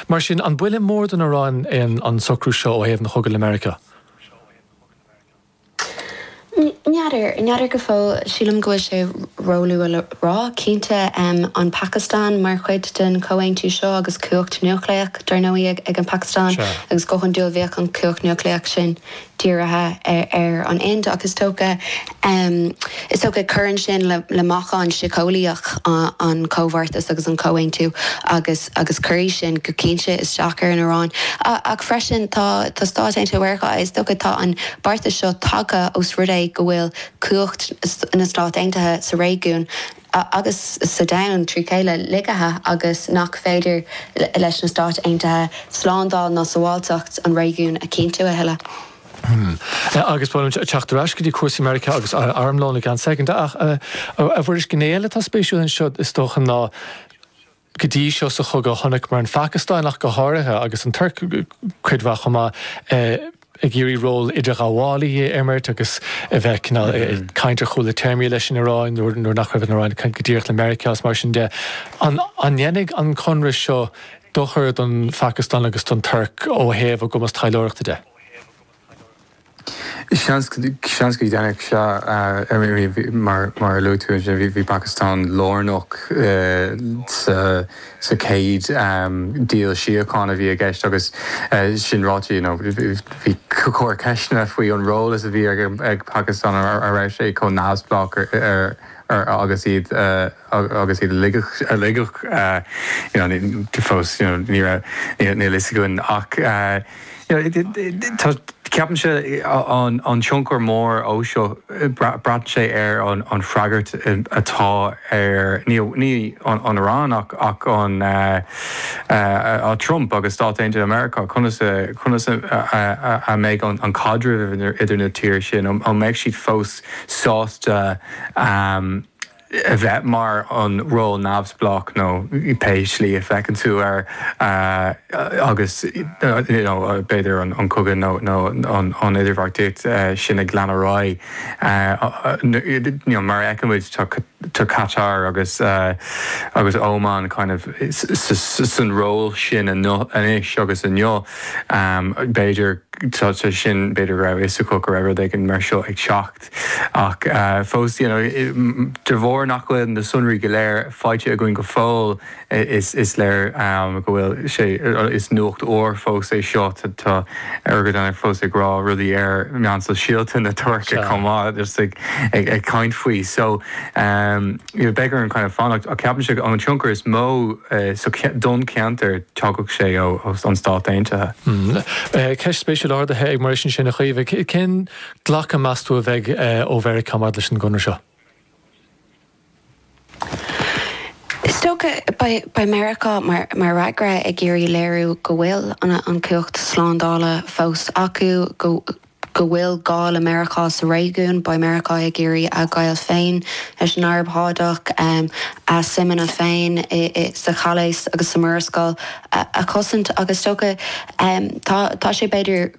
Mar sin, an buille mór don Iaráin é an socrú seo ó thaobh an chogaidh le Meiriceá? N'fheadar. N'fheadar go fóill. Sílim go bhfuil sé róluath le rá. Cinnte, an Phacastáin mar chuid den chomhaontú seo agus cumhacht núicléach, dar ndóigh, ag an Phacastáin, agus go hiondúil bheadh an chumhacht núicléach sin dírithe ar an Ind, ach is dócha, is dócha, cuireann sin le meachán síceolaíoch an chomhbheartais agus an chomhaontú agus cuirfidh sin go cinnte isteach ar an Iaráin. Ach freisin, tá tá Stáit Aontaithe Mheiriceá, is dócha, tá an beartas seo tagtha os rud é go bhfuil cumhacht na Stát Aontaithe sa réigiún, agus sa domhan trí chéile, lagaithe agus nach féidir leis na Stáit Aontaithe slándáil ná sabháilteacht an réigiúin a chinntiú a thuilleadh. Hum. Agus ba bhreá liom teacht ar ais go dtí cúrsaí Meiriceá agus armlón i gceann soicind. Ach, a Mhuiris, gné eile atá spéisiúil anseo, is dócha, ná, go dtí seo sa chogadh. Chonaiceamar an Phacastáin ach go háirithe, agus an Tuirc cuid mhaith chomh maith, ag iarraidh ról idirghabhálaí a imirt agus a bheith cineál ag caint ar chúla téarmaí leis an Iaráin nuair nach raibh an Iaráin ag caint go díreach le Meiriceá is mar sin de. An ndéanfaidh an conradh seo dochar don Phacastáin agus don Tuirc ó thaobh a gcumas taidhleoireachta de? Seans go ndéanfadh sé, mar a luaigh tú ansin, bhí Pacastáin lárnach sa chéad deal síochána a bhí i gceist. Agus sin ráite, bhí a lán ceisteanna faoi an ról a bhí ag Pacastáin an raibh sé chomh neamhspleách agus iad. agus iad ag ligean, ag ligean you know fós you know ní raibh, níl fhios againn ach you know tá, ceapaimse an an tionchar mór ó seo, braitheann sé ar an an freagairt atá ar ní ní an an Iran ach ach an eh Trump agus Stáit Aontaithe Meiriceá, conas a conas a mbeidh an an caidreamh idir na tíre sin, an mbeidh siad fós sásta ehm, a bheith mar an ról neamhspleách nó pé slí a fheiceann tú air agus you know b'fhéidir an cogadh nó an idirbheartaíocht sin ag lean ar aghaidh you know mar a fheiceann muid tá Catar agus agus Óman kind of san ról sin anois agus inniu b'fhéidir tá sé sin b'fhéidir go raibh fhios acu go raibh rud éigin mar seo ag teacht. Ach fós, you know, de bharr nach bhfuil na sonraí go léir faighte againn go fóill, is léir go bhfuil sé, is nuacht úr fós é seo, tá Erdoğan fós ag rá rudaí ar mheáin shóisialta na Tuirce chomh maith is ag caint faoi. So, you know, beidh orainn kind of fanacht ach ceapaimse an tionchar is mó don cheantar thiocfadh sé ó na Stáit Aontaithe. Ceist spéisiúil ardaithe ag Muiris ansin a Chaoimhe. Cén glacadh meas tú a bheidh ó Mheiriceá maidir leis an gconradh seo? Is dócha beidh Meiriceá, mar fhreagra, ag iarraidh léiriú go bhfuil an chumhacht slándála fós acu, go bhfuil gá le Meiriceá sa réigiún. Beidh Meiriceá ag iarraidh a ngaol féin leis an Araib Shádach, a suimeanna féin sa Chaolas agus sa Mhurascaill a chosaint agus is dócha, tá sé b'fhéidir,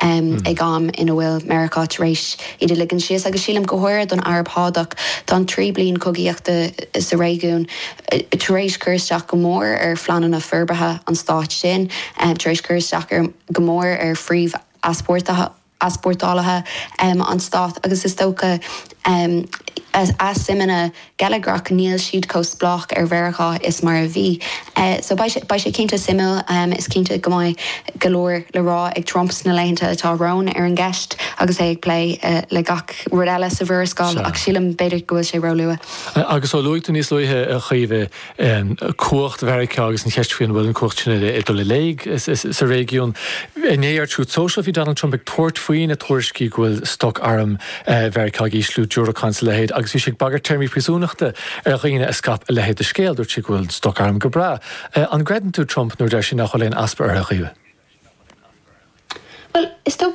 ag am ina bhfuil Meiriceá tar éis iad a ligean síos, agus sílim go háirithe don Araib Shádach, tá an trí bliain cogaíochta sa réigiún tar éis cur isteach go mór ar phleananna forbartha an stáit sin, tar éis cur isteach go mór ar phríomh-easpórtálaithe an stáit agus is dócha, Um a suimeanna geilleagrach, níl siad chomh spleách ar Mheiriceá is mar a bhí. So beidh sé, beidh sé cinnte suimiúil. Um is cinnte go mbeidh go leor le rá ag Trump sna laethanta atá romhainn ar an gceist agus é ag plé le gach rud eile sa Mhurascaill ach sílim b'fhéidir go bhfuil sé róluath. Agus ó luaigh tú níos luaithe, a Chaoimhe, ann, cumhacht Mheiriceá agus an cheist faoi an bhfuil an cumhacht sin ag dul i léig sa réigiún. Inné ar Truth Social, bhí Donald Trump ag tabhairt faoi na tuairiscí go bhfuil stoc arm Mheiriceá ag ísliú, diúracáin is a leithéid, agus bhí sé ag bagairt téarmaí príosúnachta ar dhaoine a scaip a leithéid de scéal. Dúirt sé go bhfuil stoc arm go breá. An gcreideann tú Trump nuair a deir sé nach bhfuil aon easpa orthu? Bhuel, is dócha.